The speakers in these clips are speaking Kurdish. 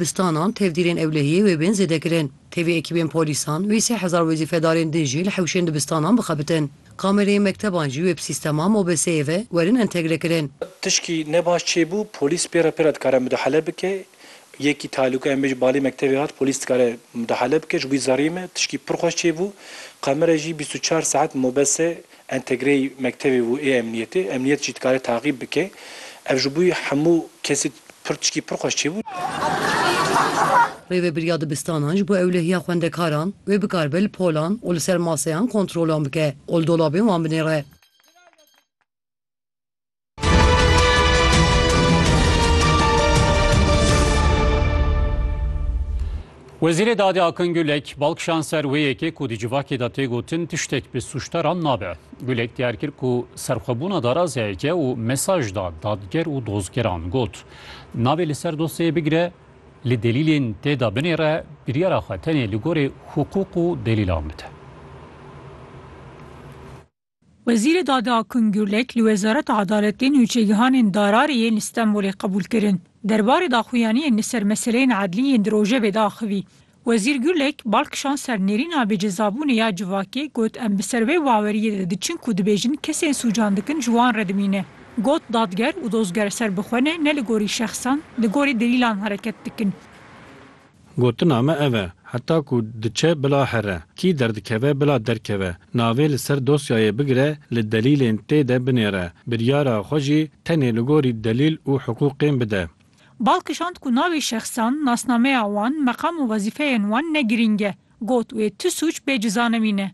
Bistanan tevdîrên ewlehiyê wê bên zêde kirin. Tevî ekîbên polîsan, wê sê hezar wezîfedarên din jî li hewşên dibistanan bixebitin. Kamereyên mekteban jî wê bi sîstema mobeseyê ve werin entegre kirin. Tişkî ne baş çêbû, polîs pê re pê re dikare mudahale bike. Yekî talûka em bê ji balê mektevê hat, polîs dikare mudahale bike, ji bo wî zerrî me. Tişkî pir xweş çêbû. Kamere jî bîst û çar saet mobese Entegreyî mektevê bû ê emniyetê, emniyet jî dikare taqîb bike. Ev ji bûyî hemû kesî pir tişkî pir xweş çêbû. Rêveberiya dibistanan ji bo ewlehiya xwendekaran wê bikaribe li polan û li ser maseyan kontrolan bike û li dolabên wan binêre. Wezîrê Dadê Akin Gulek bal kişand ser wê yekê ku di civakê de tê gotin tiştek bi sûcdaran nabe. Gulek diyar kir ku serxwebûna darazeyek e û mesaj da dadger û dozgeran got, Navê li ser dosyeyê bigire, li delîlên tê de binêre, biryara xwe tenê li gorî hiqûq û delîlan bide. Wezîrê Dadê Akun Gurlek li Wezareta Edaletê nûçegihanên darariyê li Stenbolê qebûl kirin. Derbarê daxuyaniyên li ser meseleyên edlî yên di rojevê de axivî. Wezîr Gurlek bal kişand ser nêrîna bêcezabûnê ya civakê got em bi ser vê baweriyê de diçin ku dibêjin kesên sûcan dikin ji wan re dimîne. Got dadger û dozger serbixwe ne ne li gorî şexsan li gorî delîlan hereket dikin. Gotina me ev e, heta ku diçe bila here, kî derdikeve bila derkeve, navê li ser dosyayê bigire, li delîlên tê de binêre, biryara xwe jî tenê li gorî delîl û hiqûqên bide. Bal kişand ku navê şexsan, nasnameya wan, meqam û wezîfeyên wan ne girîng e. Got wê tu sûc bê cizanevî ne.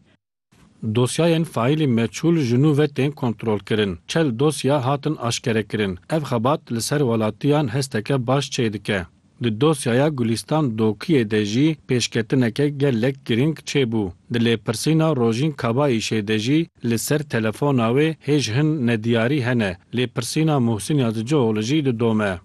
Dosyayên faîlî meçûl ji nû ve tên kontrolkirin. Çel dosya hatin aşkerekirin. Ev xebat li ser welatiyan hesteke baş çê dike. Di dosyaya Gulîstan Dokiyê de jî pêşketineke gelek girîng çêbû. Di lêpirsîna Rojîn Kabayîşê de jî li ser telefona wê hêj hin nediyarî hene. Lêpirsîna Muhsin Yazıcıoğlu jî didome.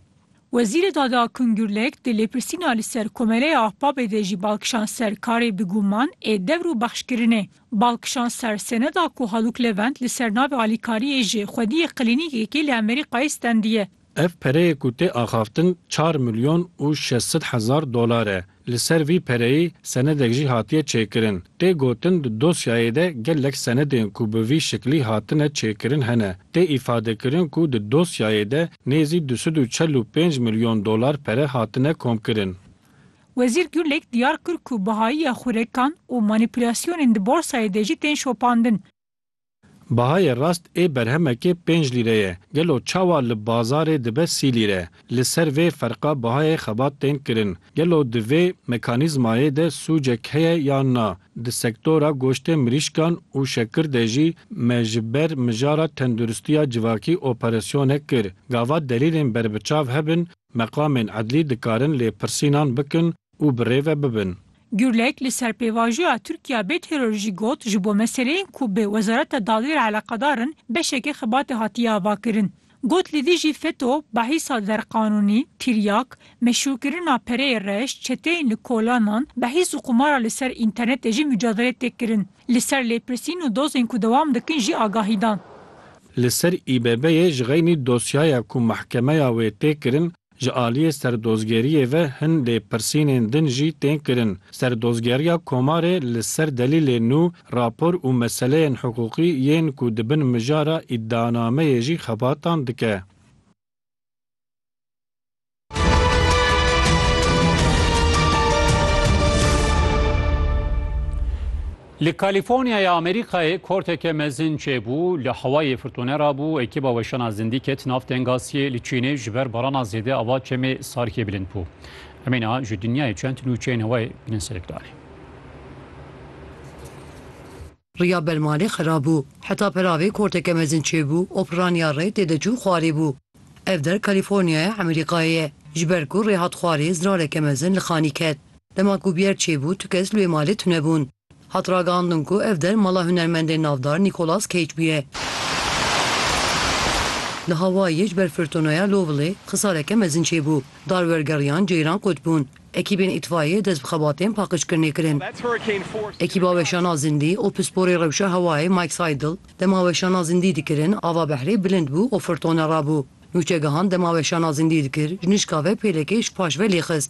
Wezîrê Dadê Akun Gurlek di lêpirsîna li ser Komeleya Ahbabê de jî bal kişand ser karê bi guman ê dewr û bexşkirinê. Bal kişand ser seneda ku Haluk Levent li ser navê alîkariyê ji xwediyê klînîkekê li Emerîkayê stendiye. Ev pereyê ku tê axaftin çar milyon û şeş sed hezar dolar e. Li ser vî pereyî senedek jî hatiye çêkirin. Tê gotin di dosyayê de gelek senedên ku bi vî şiklî hatine çêkirin hene. Tê îfadekirin ku di dosyayê de nêzî du sed û çel û pênc milyon dolar pere hatine komkirin. Wezîr Gurlêk diyar kir ku bihayiya xurekan û manîpulasyonên di borsayê de jî tên şopandin. Bahayê rast ê berhemekê pênc lîre ye, gelo çawa li bazarê dibe sî lîre? Li ser vê ferqa bahayê xebat tên kirin. Gelo di vê mekanîzmayê de sûcek heye yan na? Di sektora goştê mirîşkan û şekir de jî me ji ber mijara tenduristiya civakî operasyonek kir. Gava delîlên berbiçav hebin, meqamên edlî dikarin lêpirsînan bikin û bi rê ve bibin. Gurlek li ser pêvajoya Tirkiya bê teror jî got, Ji bo meseleyên ku bi Wezareta Dawiyê re eleqedar in beşeke xibatê hatiye avakirin. Got li dijî feto, behîsa derqanûnî, tiryak, meşrûkirina pereyê reş, çeteyên li kolanan, behîs û qumara li ser înternetê jî mucadelê tê kirin. Li ser lêpirsîn û dozên ku dewam dikin jî agahî dan. Li ser İBB'ê ji xeynî dosyaya ku mehkemeya wê tê kirin Ji aliyê serdozgeriyê ve hin lêpirsînên din jî tên kirin. Serdozgeriya Komarê li ser delîlên nû, rapor û meseleyên hiqûqî yên ku di bin mijara îdianameyê jî xebatan dike. Li Kalîforniya ya Amerîkayê korteke mezin çêbû, li hewayê firtûne re bû, ekîba weşana zindî ket nav tengasiyê, li Çînê ji ber barana zêde ava çemê Sarkê bilind bû. Em ê niha ji dinyayê çend nûçeyên hewayê bidin serê planê. Riya belmalê xera bû. Heta peravê korteke mezin çêbû û pirraniya rê têde çû xwarê bû. Ev der Kalîforniya ya Amerîkayê ye. Ji ber ku rê hat xwarê zirareke mezin li xanî ket. Dema ku bûyer çêbû tu kes li wê malê tunebûn. Hat ragihandin ku ev der mala hunermendê navdar Nîkolas Keyc bûye. Li Hawayiyê ji ber firtoneya Lovely xisareke mezin çêbû. Dar wergeriyan ceyran qut bûn. Ekîbên îtfayiyê dest bi xebatên paqijkirinê kirin. Ekîba weşana zindî û pisporê rewşa hewayê Mike Seidel dema weşana zindî dikirin ava behrê bilind bû û firtone rabû. Nûçegihan dema weşana zindî dikir ji nişka ve pêlekê ji paş ve lêxist.